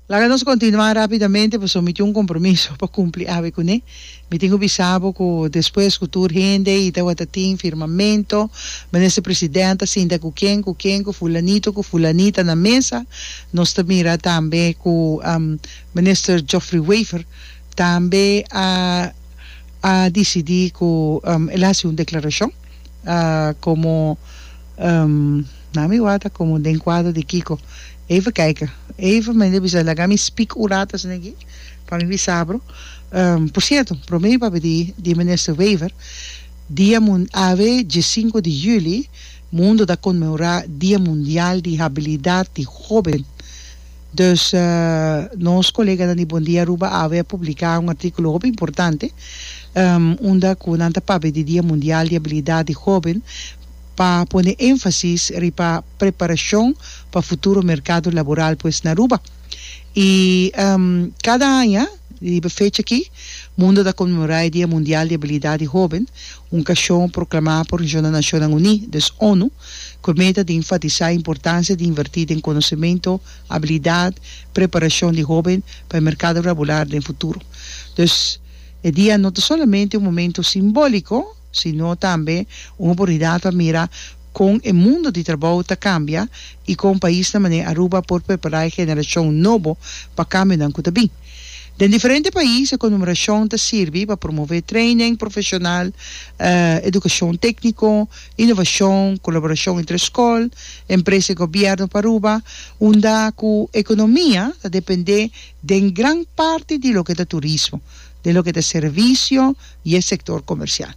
Laga nos kontinuá rápidamente pasobra mi tin un kompromiso pa kumpli awe kuné. Mi tin ku bisa bo ku despues ku tur hende i tabata tin firmamento, Minister President ta sinta ku ken ku ken, ku fulanito ku fulanita na mesa, nos ta mira tambe ku Minister Geoffrey Wever tambe a a disidí ku el a hasi un deklarashon komo nan mi wak ta komo den kuadro di kiko. Eva kijke Eva mende a bisa laga mi speak un rato asina aki pa mi bisa bro por cierto prome mi papia di minister Wever dia mun ave die sinku di juli mundo ta conmemora dia mundial di habilidad di hoben dus nos coleganan di Bon Dia Aruba ave a publica un articulo hopi importante unda cu nan ta papia di dia mundial di habilidad di hoben pa pone énfasis riba preparashon pa futuro merkado laboral pues na Aruba. I kada aña riba e fecha akí mundo ta konmemorá e Dia Mundial di Abilidat di Hóben, un okashon proklamá por Nacionnan Nashonnan Uní, dus onu, ku e meta di enfatisá e importansia di invertí den konosementu, abilidat, preparashon di hóben pa e merkado laboral den futuro. Dus e dia no ta solamente un momentu simbóliko. sino tambe un oportunidat pa mira kon e mundo di trabou ta kambia i kon paisnan manera Aruba por prepará e generashon nobo pa kambionan ku ta bin. Den diferente pais e konumerashon ta sirbi pa promové treinen profeshonal, edukashon tékniko, inovashon, kolaborashon entre skol, empresa i gobièrnu pa Aruba, unda ku ekonomia ta dependé den gran parti di loke ta turismo, den loke ta servisio, i e sektor komersial.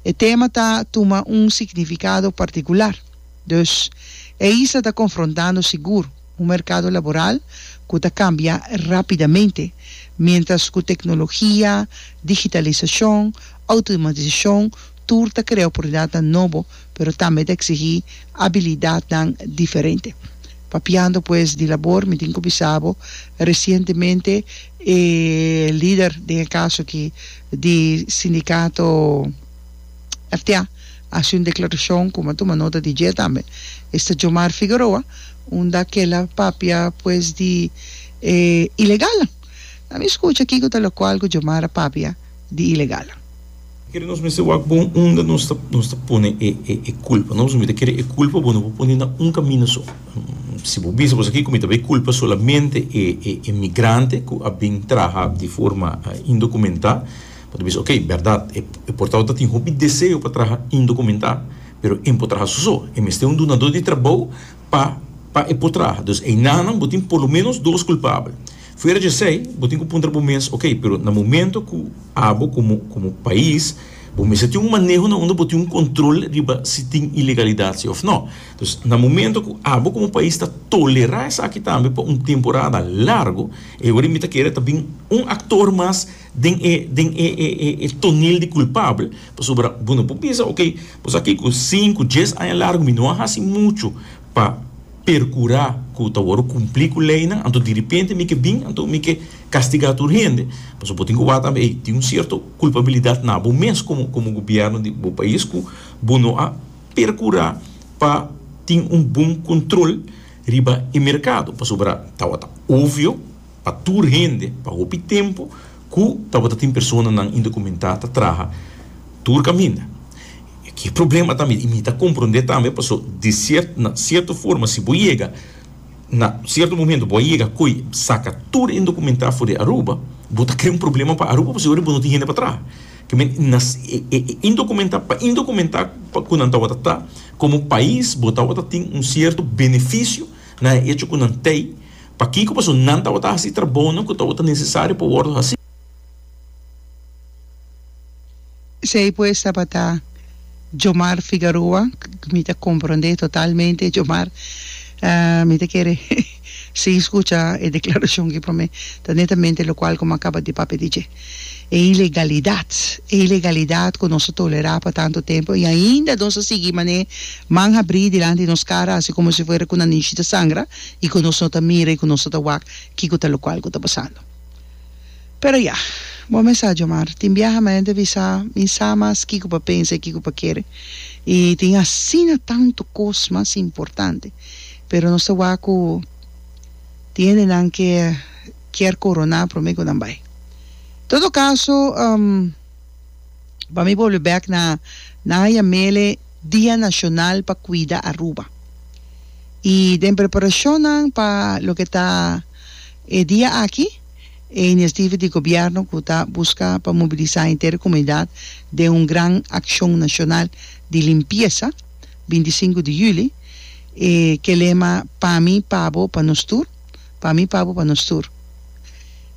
E tema ta tuma un signifikado partikular. Dus, e isla ta konfrontando sigur un merkado laboral ku ta kambia rápidamente, miéntras ku teknologia, digitalisashon, outomatisashon tur ta krea oportunidatnan nobo pero tambe ta eksihí abilidatnan diferente. Papiando pues di labor, mi tin ku bisa bo, resientemente e lider den e kaso aki di sindikato FTA a hasi un deklarashon ku mi a tuma nota di dje tambe, esta Jomar Figueroa, unda kel a papia pues di e ilegalnan. Lami skucha kiko ta lokual ku Jomar a papia. di ilegal. Kere nos mester wak bon unda nos ta nos ta pone e e culpa no pasobra mi ta kere e culpa bo no por pone na un camino so si bo bisa boso aki cu mi ta bay culpa solamente e e e migrante cu a bin traha di forma indocumenta bo ta bisa okay berdad e e portao ta tin hopi deseo pa traha indocumenta pero e no por traha soso e mester un dunador di trabao pa pa e por traha dus enanan bo tin por lo menos dos culpabel. Fuera di esei, bo tin ku puntra bo mes, Oke, pero na momentu ku abo komo komo pais bo mester tin un maneho na unda bo tin un kontrol riba si tin ilegalidat si òf nò. Entonces, na momentu ku abo komo pais ta tolerá esaki tambe pa un temporada largu, e orie mi ta kere ta bin un aktor mas den e den e e tonel di kulpabel, pasobra bo no por bisa, Oke, bo sa ki ku sinku, dies aña largu mi no a hasi muchu. pa percura cu ta worde cumpli cu leynan, anto direpente mi ke bin, anto mi ke castiga tur hende. Pasobra bo tin cu wak tambe ey, tin un cierto culpabilidad na bo mes como como gobierno di bo pais cu bo no a percura pa tin un bon control riba e mercado, pasobra tawata obvio. pa tur hende pa hopi tempu ku tabata tin personanan indokumentá ta traha tur kaminda. E ke problema tambe i mi ta komprondé tambe paso di siert na sierto forma si bo yega na sierto momento bo a yega koe saka tur indokumentá for di Aruba bo ta krea un problema pa Aruba pasobra bo no tin hende pa traha ke men na e indokumentá pa indokumentá pa ku nan tabata ta komo pais bo tabata tin un sierto benefisio na e echo ku nan tei Pakiko pasobra nan tabata hasi e trabounan ku tabata nesesario pa wòrdu hasi. Esei pues tabata Djomar Figaroa, mi ta komprondé totalmente Djomar, mi ta kere sigui skucha e deklarashon aki promé, ta netamente lokual komo a kaba di papia di dje. e ilegalidat, e ilegalidat ku nos a tolerá pa tantu tempu i ainda nos a sigui man'é man habrí dilanti di nos kara hasi komo si fuera ku nan nishi ta sangra i ku nos no ta mira i ku nos no ta wak kiko ta lokual ku ta pasando. Pero ya, bo mes sa djamar, tin biaha mi a hende bisa mi sa mas kiko pa pensa i kiko pa kere i tin asina tantu kos mas importante, pero nos ta wak ku tin hendenan ke kier koroná promé ku nan bai. Todo kaso, pa mi bolbe bèk na nan haya mele Dia Nashonal pa Kuida Aruba. I den preparashonnan pa loke ta e dia aki, e inisiativa di gobièrnu ku ta buska pa mobilisá henter e komunidat den un gran akshon nashonal di limpiesa, binti sinku di yüli, e ke lema Pa mi, pa bo, pa nos tur, Pa mi papo pa nos tur.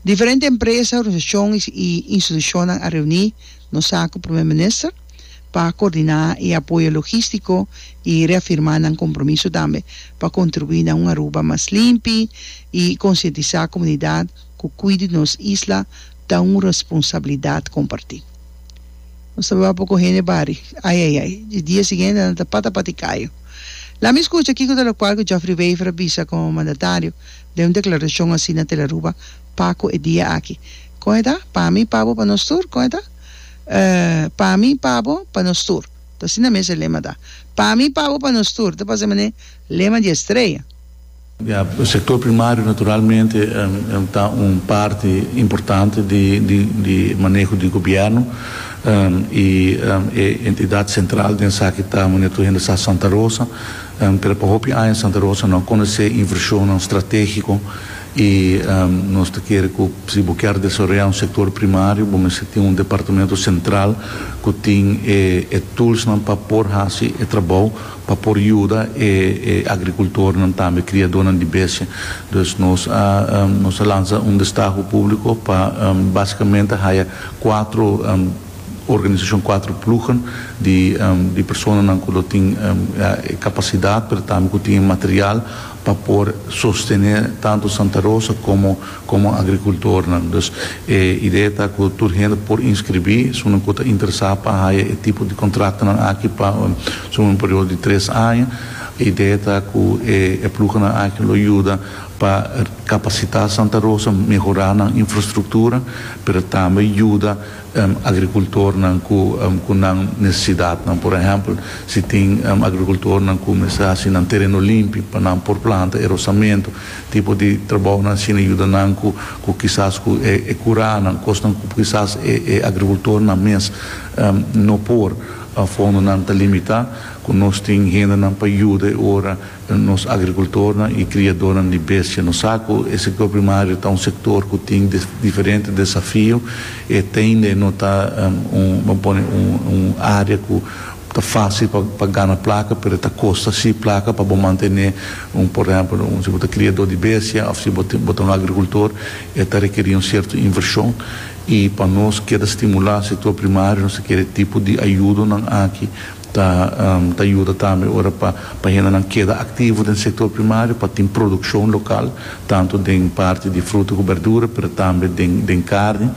Diferente empresa, organisashon i institushonnan a reuní nos sa ku Prome Minister pa koordiná e apoyo logístiko i reafirmá nan kompromiso tambe pa kontribuí na un Aruba mas limpi i konsientisá komunidat ku kuido di nos isla ta un responsabilidat kompartí. Nos ta bapo ku hende bari. Ai ai ai. E dia siguiente nan ta pata pa tikayu. Lami skucha kiko ta lokual ku Geoffrey Wever a bisa komo mandatario den un deklarashon hasi na Telaruba Paku e dia aki. Kon e ta? Pa mi, pa bo, pa nos tur? Kon e ta? Eh, pa mi, pa bo, pa nos tur. Ta asina mes e lema ta. Pa mi, pa bo, pa nos tur. Ta pasa e manera lema di Estrella. Ya, sector primario naturalmente ta un parti importante di maneho di gobierno y e entidad central den esaki ta manera tur hende sa Santa Rosa, pero pa hopi aña Santa Rosa no a conoce inversionnan strategico y nos ta kere cu si bo kier desaroya un sector primario bo mester tin un departamento central cu tin e toolsnan pa por haci e trabao. pa por yuda e e agrikultornan tambe kriadónan di bestia. Dus nos a nos a lansa un destahu públiko pa básikamente haya kuatro organisashon, kuatro plugen di di personanan ku lo tin e kapasidat pero tambe ku tin e material pa por sostené tantu Santa Rosa komo como agricultornan. Dus e idea ta cu tur hende por inscribi esunnan cu ta interesa pa haya e tipo di contratonan aki pa esun un periodo di tres aña. E idea ta cu e ploegennan aki lo yuda pa capacita Santa Rosa, mehora nan infrastructura, pero tambe yuda agricultornan cu nan necesidadnan. Por ehempel, si tin agricultornan cu mester haci nan tereno limpi pa nan por planta e rosamento, Tipo di trabounan asina yuda nan cu cu kisas cu e e curanan, cosnan cu kisas e e agricultornan mes no por, fondonan ta limita, cu nos tin hendenan pa yuda e ora nos agricultornan y criadornan di bestia. Nos sa cu e sector primario ta un sector cu tin diferente desafio y e tende no ta un, bo pone un, un area cu. Ta fácil pa pa gana plaka pero ta kosta sí plaka pa bo mantené un por ehèmpel un si bo ta kriadó di bestia òf si bo ta bo ta un agrikultor e ta rekerí un sierto invershon i pa nos keda stimulá sektor primario nos ta kere e tipo di ayudonan aki ta ta yuda tambe ora pa pa hendenan keda aktivo den sektor primario pa tin produkshon lokal tantu den parti di fruta ku bèrdura pero tambe den den karni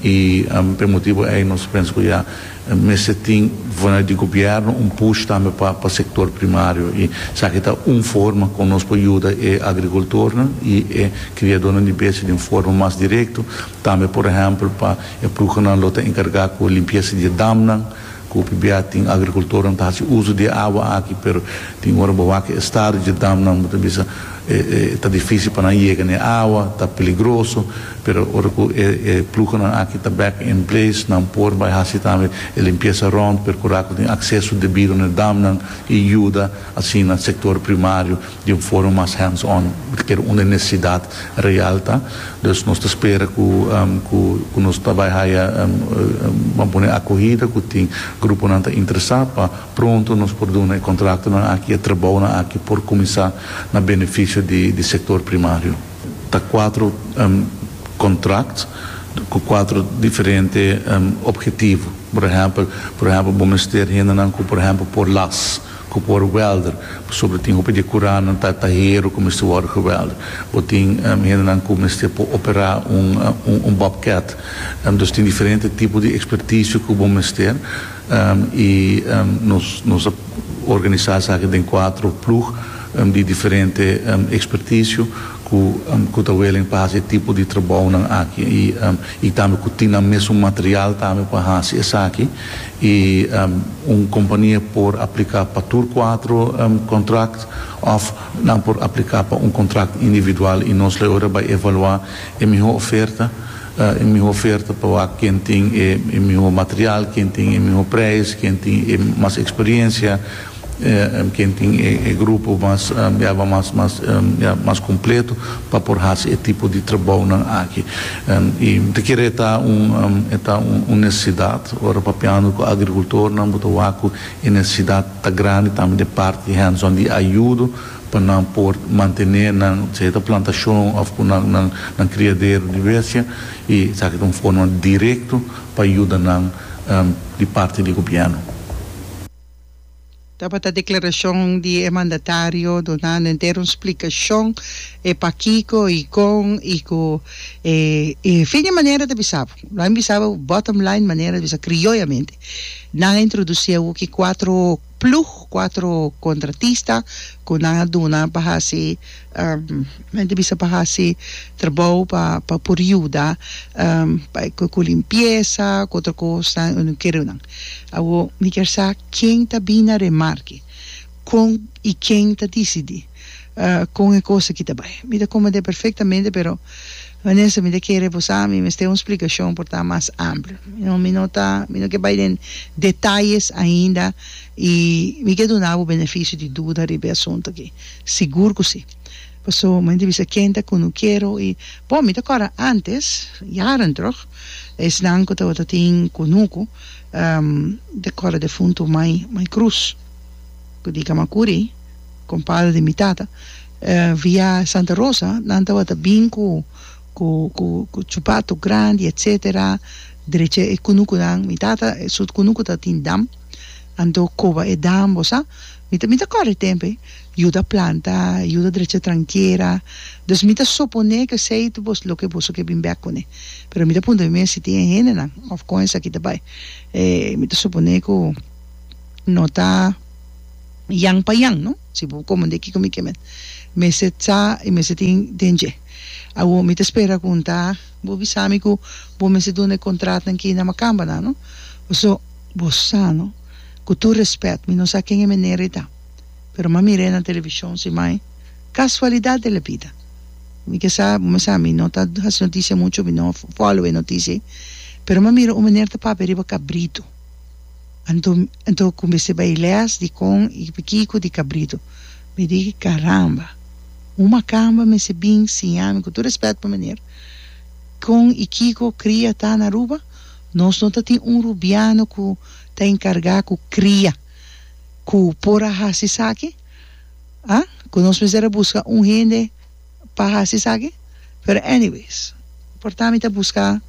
i p'e motibu ei nos pensa ku ya. Mester tin vanuit di gobierno un push tambe pa pa sector primario y esaki ta un forma con nos por yuda e agricultornan y e criadornan di besti den forma mas directo, tambe por ehempel pa e ploegennan lo ta encarga cu limpieza di e damnan cu p'bia tin agricultornan ta haci uzo di e awa aki pero tin ora bo wak e estado di e damnan bo ta bisa E ta difícil pa nan yega na e awa, ta peligroso, pero ora ku e pluhonan aki ta back in place, nan por bai hasi tambe e limpiesa rònt, perkurá ku tin akseso debido na e damnan i yuda asina sektor primario di un forma mas hands on loke unda e nesesidat real ta. Dus nos ta spera ku ku nos ta bai haya, bo a pone, akohida, ku tin gruponan ta interesá pa. Pronto nos por duna e kontratonan aki, e trabounan aki por kuminsá na benefisio di di sektor primario. Ta kuatro kontrakt ku kuatro diferente ophetivo. Por ehèmpel, por ehèmpel bo mester hendenan ku por ehèmpel por las, ku por wèlder, pasobra tin hopi di e kuranan ta ta hero ku mester wòrdu gewèlder. Bo tin hendenan ku mester por operá un un un bòbkèt. Dus tin diferente tipo di ekspertisio ku bo mester. I nos a organisá esaki den kuater plug di diferente ekspertisio ku ta welen pa hasi e tipo di trabounan aki i tambe ku tin nan mesun material tambe pa hasi esaki. I un kompania por apliká pa tur kuater kontrakt òf nan por apliká pa un kontrakt individual i nos lo e ora bai evaluá e mihó oferta. e miho oferta pa wak ken tin e miho material, ken tin e miho preis, ken tin e mas experiencia, ken tin e grupo mas yaga mas mas yaga mas completo pa por haci e tipo di trabounan aki. Y bo ta kere e ta un e ta un necesidad, ora papiando cu agricultornan bo ta wak cu e necesidad ta grandi tambe den parti hands-on di ayudo, pa nan por mantené nan sea ta plantashon òf ku nan nan nan kriadero di bestia i esaki ta un forma direkto pa yuda nan di parti di gobièrnu. Tabata deklarashon di e mandatario duna nenter un splikashon e pakiko i kon i ku e e fin e manera ta bisa bo. Lo a bisa bo bottom line manera ta bisa krioyamente nan a introdusí awo ki kuatro. Ploeg, cuatro contratista cu nan a duna pa haci, nan ta bisa pa haci trabou pa pa por yuda cu limpieza, cu otro cosa, y no kere nan. Awor mi kier sa ken ta bini na remar aki? Con y ken ta dicidi? con e cosa ki ta bay. Mi ta comprende perfectamente pero Vanessa mi ta kere bo sa mi mester un splicacion por ta mas amplo. Mi no mi no ta mi no ke bay den detalles ainda y mi ke duna bo beneficio di duda riba e asunto aki sigur cu si. Paso mi ta bisa ken ta cunuquero y bon mi ta acorda antes jaren terug esnan cu tabata tin cunucu mi ta acorda defunto Mai Mai Cruz cu di Gamacuri. Con padre di mi tata via Santa Rosa nan tabata bin cu cu cu cu chupato grandi etc derecha e cunucunan mi tata su cunucu ta tin dam anto coba e dam bo sa mi ta mi ta corre tempe yuda planta yuda derecha tranquera dus mi ta supone cu esey ta boso loke boso ke bin bek cune pero mi ta puntra mi mes si tin e hendenan of con esaki ta bay mi ta supone cu no ta. Yan pa yan, no? Si bo komo den kiko mi ke mester mester sa i mester tin den dje. Awor mi ta spera ku un ta bo bisa mi ku bo mester duna e kontratnan ki na Makambanan, no? Paso bo sa, no? Ku tur rèspèt, mi no sa ken e meneer ei ta, pero m'a mir'é na televishon si mai. Kasualidat de la bida. Mi ke sa, bo mester sa mi no ta hasi notisia muchu, mi no fòlow e notisia ei, pero m'a mira un meneer ta papia riba kabritu. Anto anto cumbesé bay les di con y pa kico di cabrito. Mi di, Caramba! Un macamba mester bin siñami cu tur respet pa meneer con y kico cria ta na Aruba. Nos no ta tin un Rubiano cu ta encarga cu cria cu por a haci esaki, ah? Cu nos mester a busca un hende. pa hasi esaki pero anyways porta mi ta buska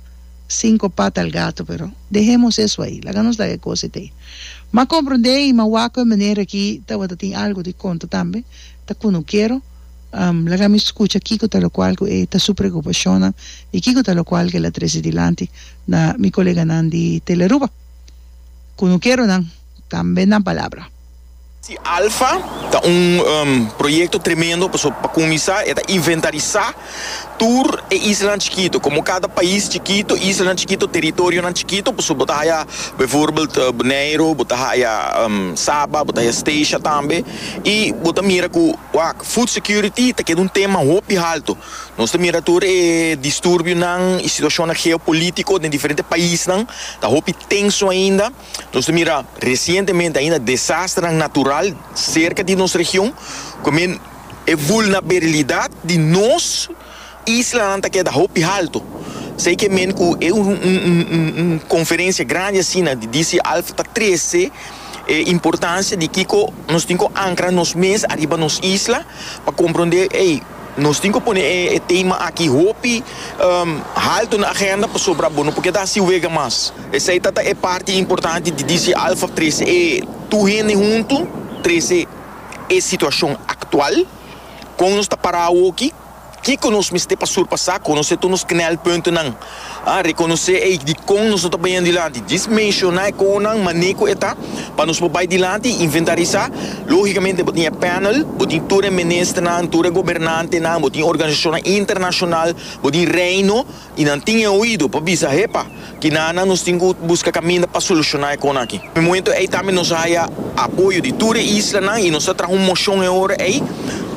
cinco pata al gato pero dehemos eso ahi laga nos laga e cosa ete ma compronde y ma wak cu e meneer aki tabata tin algo di conta tambe ta cu no kiero laga mi scucha kico ta locual cu e ta su preocupacionnan y kico ta locual cu el a trece dilanti na mi coleganan di Tele Aruba cu no kiero nan tambe nan palabra. Si Alfa ta un proyekto tremendo pasobra pa kuminsá e ta inventarisá tur e islanan chikitu komo kada pais chikitu, islanan chikitu, teritorionan chikitu pasobra bo ta haya bivoorbeeld Boneiro, bo ta haya Saba, bo ta haya Statia tambe i bo ta mira ku wak food security ta keda un tema hopi haltu. Nos ta mira tur e disturbionan i situashonnan geopolítiko den diferente paisnan ta hopi tenso ainda. Nos ta mira resientemente ainda desasternan natural serka di nos region cu men e vulnaberilidad di nos islanan ta keda hopi halto. Esey ke men cu e un conferencia grandi asina di DCALF ta trece e importancia di kico nos tin cu ancra nos mes ariba nos isla pa compronde ey. Nos tin cu pone e tema aki hopi halto na agenda pasobra bo no por keda sin wega mas. Esey ta ta e parti importante di DC Alpha trece e tur hende hunto, trece e situacion actual, con nos ta para awoki, kico nos mester pa surpasa, conoce tur nos knelpuntonan a rekonosé ei dikon nos no ta baña dilanti, djis menshoná e konan mané ku e ta pa nos por bai dilanti i inventarisá. Lógikamente bo tin e panel, bo tin tur e ministernan, tur e gobernantenan, bo tin organisashonnan internashonal, bo tin Reino i nan tin e oido pa bisa, Hepa, kinanan nos tin ku buska kaminda pa solushoná e konan aki? Momentu ei tambe nos haya apoyo di tur e islanan i nos ta traha un moshon e ora ei,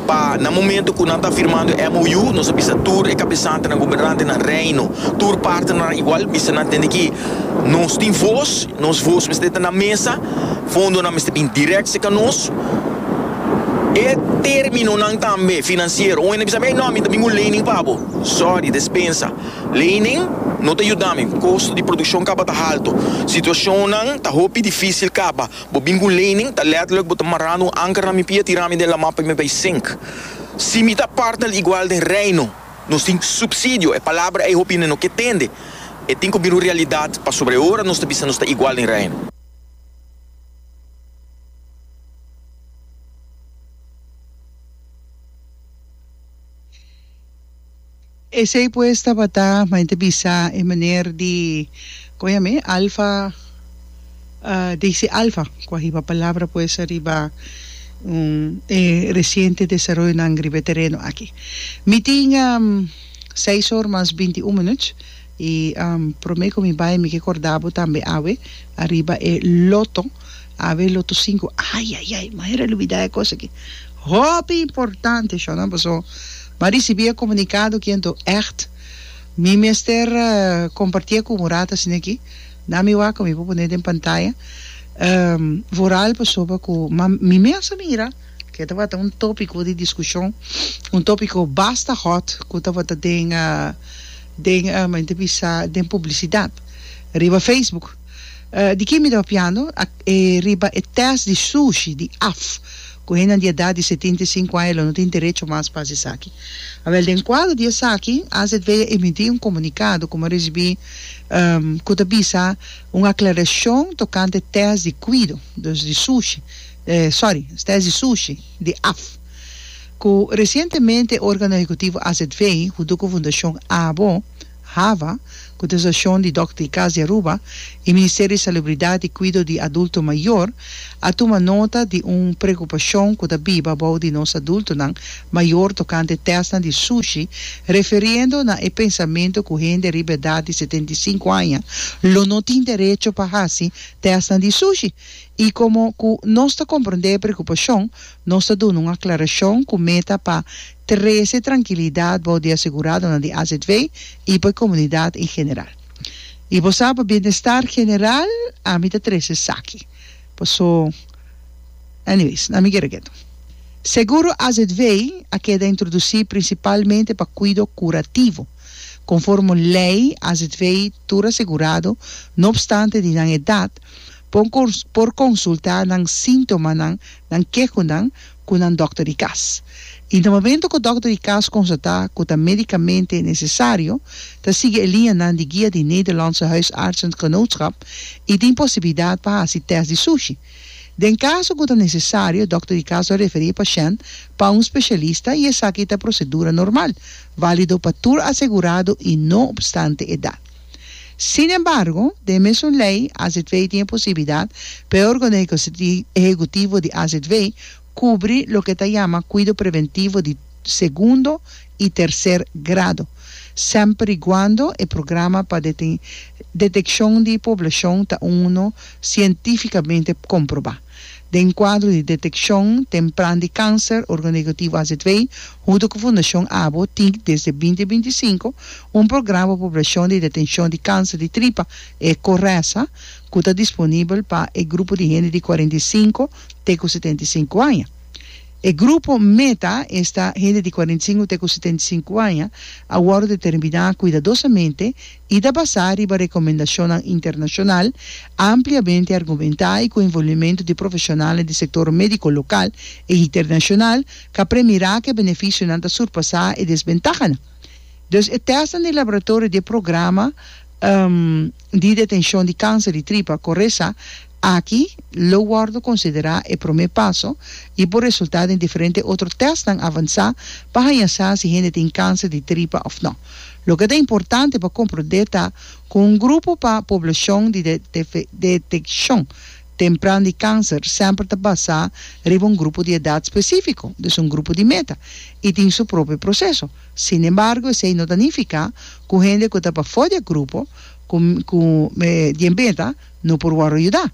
Pa na momento cu nan ta firmando e MOU, nos a bisa tur e cabesantenan, gobernaantenan, Reino, tur partenan igual, bisa nan tende que nos tin voz, nos voz mester ta na mesa, fondonan mester bin direct cerca nos. E terminonan tambe financiero, un hende a bisa mi, ey no, mi ta bin cu lening pa bo. Sorry, despensa. Lening no ta yuda mi, costo di produccion caba ta halto, situacionnan ta hopi dificil caba. Bo bin ku leynin, ta lèterlik bo ta mará un anker na mi pia, tirá mi den lamá pa mi bai sink. Si mi ta partnel igual den Reino, nos tin supsidio. E palabra ei hopi no ke tende. E tin ku bira un realidat pasobra e ora nos ta bisa nos ta igual den Reino. Esey pues tabata maente bisa e meneer di con yam'e Alfa Daisy Alfa cu a hiba palabra pues ariba e reciente desaroyonan riba e tereno aki. Mi tin seis or mas binti un minuut. E prome ku mi bai mi ke korda bo tambe awe ariba e loto, awe loto sinku, ayayay manera lubida e kos aki, hopi importante shon nan paso m'a risibí e komunikado aki anto ègt mi mester kompartié ku Murad asin'aki, nan mi wak mi por pone den pantaya vooral pasoba ku ma mi mes a mira ke tabata un topiko di diskushon, un topiko basta hot ku tabata den. Den mi ta bisa den publicidad riba Facebook. Di kin mi ta papiando? E riba e test di sushi di af cu hendenan di edad di setinta i sinku aña lo no tin derecho mas pa haci esaki. Awel den cuadro di esaki AZV a emiti un comunicado cu mi a ricibi cu ta bisa un aclaracion tocante test di cuido, dus di sushi, sorry, test di sushi di af. Ku resientemente Organo Ehekutivo AZV huntu ku Fundashon Abo, hava, ku ta sashon di Dòkter di Kas di Aruba i Ministerio di Salubridat i Kuido di Adulto Mayor a tuma nota di un preokupashon ku ta biba bou di nos adultonan mayor tokante tèstnan di sushi referiendo na e pensamentu ku hende riba edat di setenta i sinku aña lo no tin derecho pa hasi tèstnan di sushi i komo ku nos ta komprondé e preokupashon Nos ta duna un aclaracion cu meta pa trece trankilidat bou di aseguradonan di AZV y pa e comunidad en general. Y bo sa, pa bienestar general ami ta trece esaki. Paso, anyways, na mi kere ketu. Seguro AZV a keda introduci principalmente pa cuido curativo. Conformo ley AZV tur asegurado, no obstante di nan edad, por consulta nan sintomanan, Nan keho nan ku nan dòkter di kas. I na momento ku dòkter di kas konstatá ku ta medikamente nesesario, ta sigui e liñanan di guia di Nederlandse Huisartsengenootschap i tin posibilidat pa hasi tèst di sushi. Den kaso ku ta nesesario, dòkter di kas lo referí e pashènt pa un spesialista i esaki ta prosedura normal, válido pa tur asegurado i no opstante edat. Sin embargo, den e mesun lei, azv tin e posibilidat pa e organo ehekutivo di azv kubri loke ta yama kuido preventivo di segundo i terser grado, semper i guando e programa pa detekshon di poblashon ta uno sientifikamente komprobá. den kuadro di detekshon tempran di kanser orgonegativo azw, huntu ku Fundashon abo, tin desde binti binti i sinku un programa poblashon di detenshon di kanser di tripa, e Coresa, ku ta disponibel pa e grupo di hende di kuarenta i sinku te ku setenta i sinku aña. E grupo meta esta hende di kuarenta i sinku te ku setenta i sinku aña a wòrdu determiná kuidadosamente, y ta basá riba recomendashonnan internashonal, ampliamente argumentá y cu envolvimento di profeshonalnan di sector medico local y internashonal, ca pre mirá cu e beneficionan ta surpasá e desbentahanan. Dus e testnan di laboratorio di e programa di detencion di cancer di tripa, Coresa, Aki lo wòrdu konsiderá e promé paso i por resultá den diferente otro tèstnan avansá pa haña sa si hende tin kanser di tripa òf nò. Loke ta importante pa komprondé ta ku un grupo pa poblashon di detekshon tempran di kanser sèmper ta basá riba un grupo di edat spesífiko, dus un grupo di meta, i tin su propio proseso. Sinembargo, esei no ta nifiká ku hende ku ta pafó di e grupo ku di e meta, No por wòrdu yuda.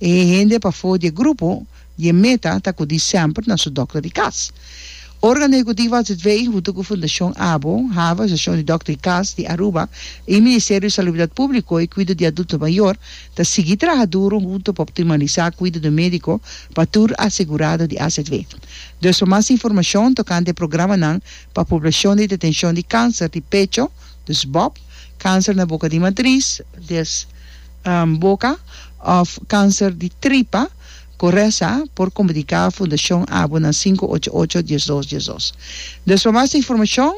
E hende pafó di e grupo di e meta ta kudí sèmper na su dòkter di kas. Organo ehekutivo Atzitwee huntu ku Fundashon abo, Hava, Asosiashon di Dòkter di Kas di Aruba i Ministerio di Salubridat Públiko i Kuido di Adulto Mayor ta sigui traha duru huntu pa optimalisá kuido médiko pa tur asegurado di Atzitwee. Dus pa mas informashon tokante e programanan pa poblashon di detenshon di kánser di pecho, dus bop, kánser na boka di matris, dus. boka of kanser di tripa ku resa por komunika Fundashon Abu na sinku ocho ocho dies dos dies dos. Dus pa mas informashon,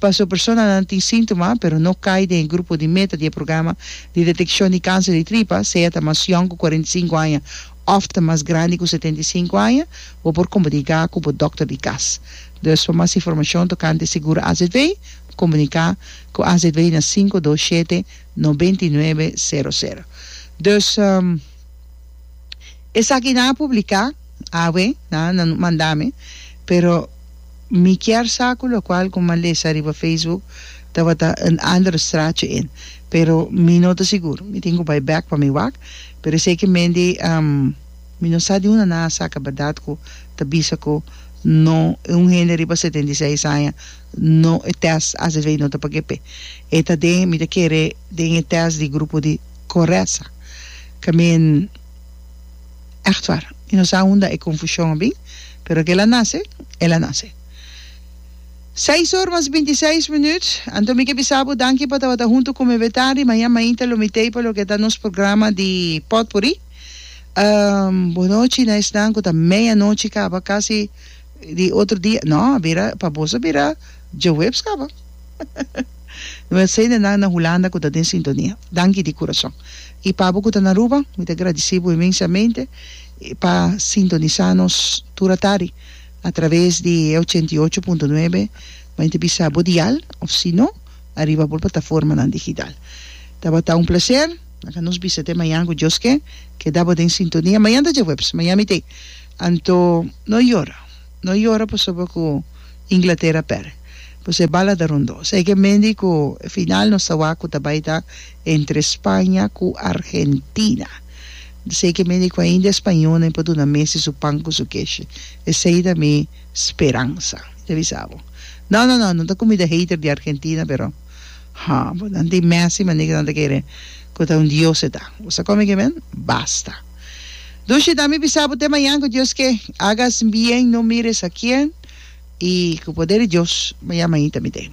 paso personanan tin síntoma pero no kai den e grupo di meta di e programa di detekshon di kanser di tripa, sea ta mas yòn ku kuarenta i sinku aña òf ta mas grandi ku setenta i sinku aña, bo por komunika ku bo dòkter di kas. Dus pa mas informashon tokante Seguro AZV, komunika ku AZV na sinku dos shete. 99 sero sero. Dus esaki nan a publica awe na nan manda mi pero mi kier sa cu locual cu mi a lesa riba Facebook tabata een ander straatje in pero mi no ta sigur mi tin cu bay back pa mi wak pero esey ki mende mi no sa di unda nan a saca berdad cu ta bisa cu no e un hende riba setenta i seis aña No e test asv no ta pa kepe e ta den mi ta kere den e test di grupo di koresa ka men echt war mi no sa unda e konfushon a bin pero kela nase ela nase seis or mas binti seis minut anto mi ke bisa bo danki pa tabata huntu ku mi Betari maña mainta lo mitei pa loke ta nos programa di potpuri bonochi na esnan ku ta meia nochi kaba kasi. Di otro dia, No, a bira, pa boso a bira djahuebs caba. Bueno, esey nennan na Hulanda cu ta den sintonia, danki di curason. Y pa abo cu ta na Aruba, mi ta gradici bo inmensamente pa sintonisa nos tur a tardi a traves di e ochenta i ocho punto nuebe, mei ta bisa bo dial, of si no, ariba bo plataformanan digital. Tabata un placer. Laga nos bisa te mañan cu Dios ke, keda bo den sintonia. Mañan ta djahuebs, mañan mit'ei. Anto no yora, no yora pasobra ku Inglatera pèr. Pues e bal a da rondó. Sa e ke mendi ku e final nos ta wak ku ta bai ta entre Spaña ku Argentina. Sa e ke mendi ku ainda e spañonen por duna Messi su pan ku su keshi. Esei ta mi speransa. Mi ta bisa bo. No, no, no, no ta ku mi ta hater di Argentina pero ha bo nan tin Messi manera ke nan ta kere ku ta un dios e ta. Bo sa kome ke men? Basta. Dushi, dami bisa bo te mañan cu Dios ke agas bien, no mires a quien, y cu poder di Dios, mañan mainta mi den.